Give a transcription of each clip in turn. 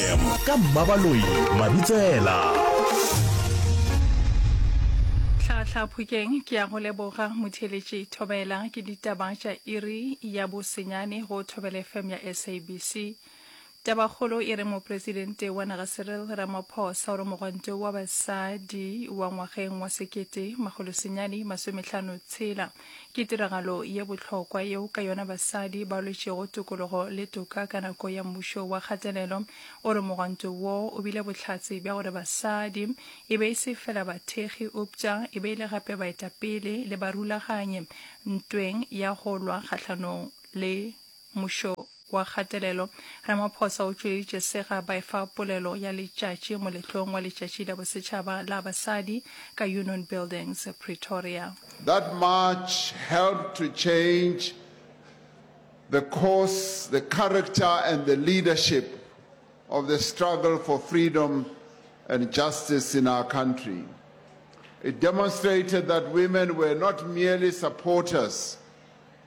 fm ka mmabaloi mabitsela tlhahla phokeng ke ya go leboga motheletši thobela ke ditaba tša iri ya bosenyane go thobela fm ya sabc tabakgolo e re mopresidente wa naga cyril ramaphosa o re mogwanto wa basadi wa ngwageng wa sekete magolosenyane masometlhano tshela Ke tiragalo ye bohlokwa yeo ka yona basadi ba lwetšego tokologo le toka ka nako ya mmušo wa kgatelelo. O re mogwanto wo o bile bohlatse bja gore basadi e be e se fela bathekgi eupša e be e le gape baetapele le barulaganyi ntweng ya go lwa kgahlanong le Mmušo wa kgatelelo, Ramaphosa o tšweleditše sega ba efa polelo ya letšatši moletlong wa letšatši la bosetšhaba la basadi ka Union Buildings, Pretoria. That march helped to change the course, the character and the leadership of the struggle for freedom and justice in our country. It demonstrated that women were not merely supporters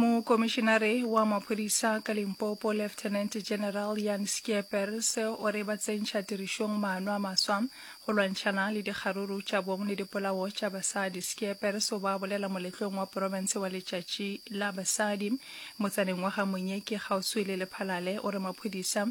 Mokomišenare wa maphodisa ka Limpopo, Lieutenant General Jan Schiepers, o re ba tsentšha tirišong maano a maswa go lwantšhana le dikgaruru tša bong le dipolao tša basadi. Schiepers o ba bolela moletlong wa porofense wa Letšatši la Basadi motsaneng wa ga Monyeki kgauswi le Lephalale. O re maphodisa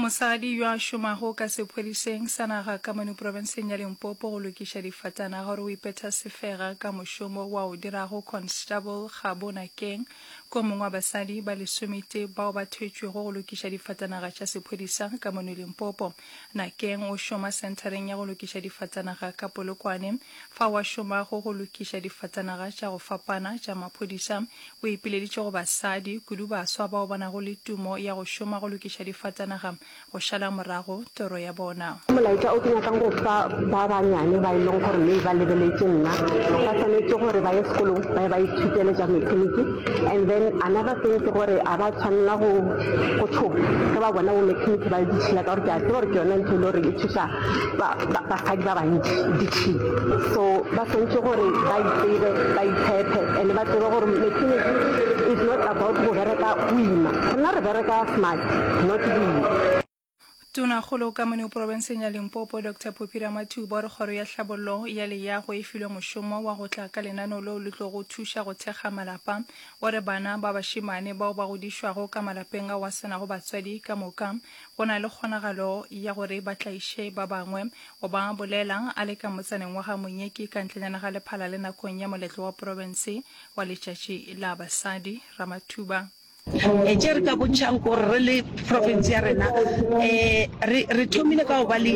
Mosadi yo a šomago ka sephodiseng sa naga ka mono profenseng ya Limpopo go lokiša difatanaga gore o ipetha sefega ka mošomo wa o dirago Constable Kgabo Nakeng ke o mongwe wa basadi ba lesometee bao ba thwetšwego go lokiša difatanaga tša sephodisa ka mono Limpopo. Nakeng o šoma Senthareng ya go Lokiša Difatanaga ka Polokwane. Fao a šomago go lokiša difatanaga tša go fapana tša maphodisa, o ipileditše go basadi, kudu baswa bao ba nago le tumo ya go šoma go lokiša difatanaga, go šala morago toro ya bona. Ke molaetša o ke nyakang go fa ba banyane ba e leng gore maybe ba lebeletše nna. Ba swanetše gore ba ye sekolong, ba ye ba ithutele tša mekaniki. And then another thing ke gore a ba tshwanela go go tshoga ge ba bona bo mechanic ba le ditšhila ka gore ke a tseba gore ke yone ntho e le gore e thusa ba- ba- basadi ba bantši ditšhila so ba swantse gore ba itsebe ba itshepe and ba tsebe gore mechanic is not about go bereka o ima rena re bereka smart not boima Tonakgolo ka Manu porobenseng ya Limpopo, Doctor Poppy Ramathuba o re kgoro ya hlabollo ya leyago e filwe mošomo wa go tla ka lenano leo le tlogo thuša go thekga malapa. O re bana ba bašemane bao ba godišwago ka malapeng ao a se nago batswadi ka moka go na le kgonagalo ya gore ba tlaiše ba bangwe. O ba bolela a le ka motsaneng wa ga Monyeki ka ntlenyana ga Lephalale nakong ya moletlo wa porobense wa letšatši la basadi. Ramathuba. Tše re ka bontšhang gore re le profense ya rena um re thomile ka go ba le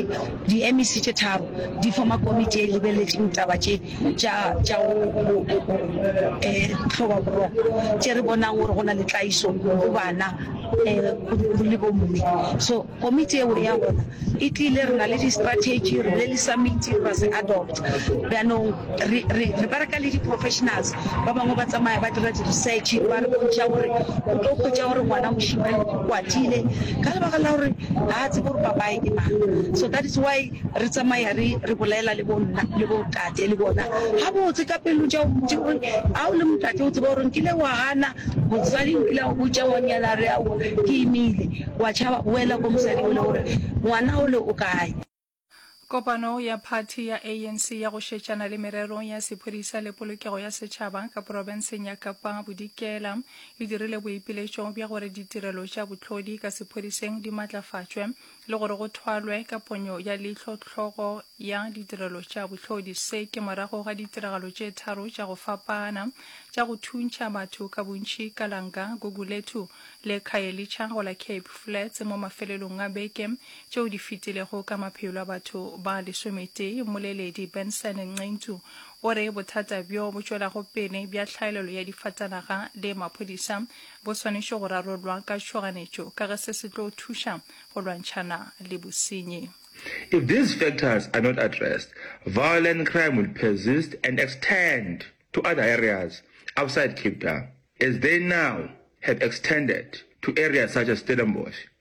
di-MEC tše tharo di forma komiti e lebeletšeng taba tše tša go um hloba boroko tše re bonang gore go na le tlaiso go bana um le bomme so Komiti yeo ya gona e tlile, re na le di-strategy, re bile le summit, ra se adopt. Bjanong re, re, re bereka le di-professionals ba bangwe ba tsamaya ba dira di-research, ba re bontšha gore o tlo hwetša gore ngwana mošemane o kwatile ka lebaka la gore ga a tsebe gore papaye ke mang. So that is why Re tsamaya re, re bolela le bo nna, le bo tate, le bona. Gabotse, ka pelo tša ntši, gore, Ga o le motate, o tseba gore nkile wa gana mosadi, nkile wa botša wa nyala, re aowa, ke imile. Wa tšhaba, boela go mosadi ole, gore, Ngwana ole o kae? Kopano ya phathi ya ANC ya go šetšana le merero ya sephodisa le polokego ya setšhaba ka porofenseng ya Kapa Bodikela e dirile boipiletšo bja gore ditirelo tša bohlodi ka sephodiseng di matlafatšwe le gore go thwalwe ka ponyo ya leihlo tlhogo ya ditirelo tša bohlodi se ke morago ga ditiragalo tše tharo tša go fapana tša go thuntšha batho ka bontši ka lanka gugulethu le khayelitsha go la cape flats mo mafelelong a beke tšeo di fetilego ka maphelo a batho ba lesometee mmoleledi benson nqentu o re bothata bjo bo tšwelago pele bja tlhaelelo ya difatanaga le maphodisa Bo swanetše go rarollwa ka tšhoganetšo ka ge se se tlo thuša go lwantšhana le bosenyi. If these factors are not addressed, violent crime will persist and extend to other areas outside Cape Town as they now have extended to areas such as Stellenbosch.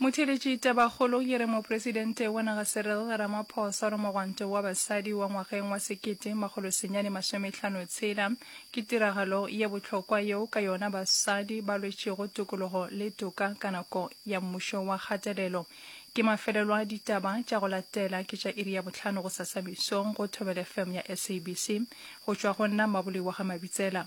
Motheeletši Tabakgolo ye re Mopresidente wa naga Cyril Ramaphosa re mogwanto wa basadi wa ngwageng wa sekete makgolo senyane masometlhano tshela ke tiragalo ye bohlokwa yeo ka yona basadi ba lwetšego tokologo le toka ka nako ya mmušo wa kgatelelo. Ke mafelelo a ditaba tša go latela ke tša iri ya bohlano gosasa mesong go Thobel FM ya SABC go tšwa go nna Mmaboliwa Gamabitsela.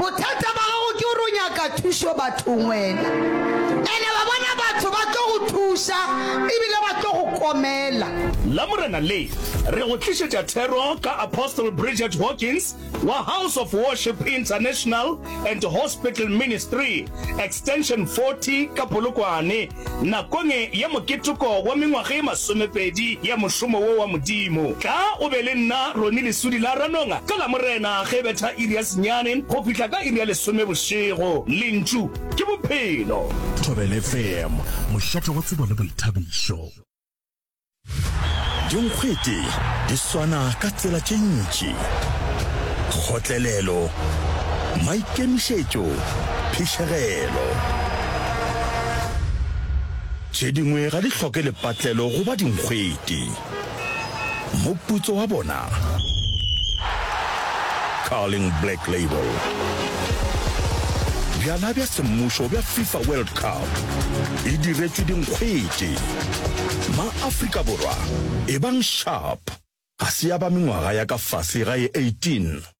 Bothata ba gago ke gore o nyaka thušo bathong wena. And-e wa bona batho ba tlo go thuša ebile ba tlo go komela. Lamorena le, re go tlišetša thero ka Apostle Bridget Hawkins wa House of Worship International and Hospital Ministry, Extension 40 ka Polokwane. Nakong ya moketeko wa mengwaga ye masomepedi ya mošomo wo wa Modimo, tla o be le nna Ronnie Lesudi la Ranonga ka Lamorena ge e betha iri ya senyane go fihla ka iri ya lesome bošego. Lentšu ke Bophelo. Thobelefm, mošate wa tsebo le boithabišo. Dinkgwete di swana ka tsela tše ntši, kgotlelelo, maikemišetšo, phišegelo. Tše dingwe ga di hloke lepatlelo go ba dinkgwete. Moputso wa bona. Carling Black Label. Bjala bja semmušo bja FIFA World Cup e diretšwe dinkgwete. Ma-Afrika Borwa, ebang sharp. Ga se ya ba mengwaga ya ka fase ga e 18.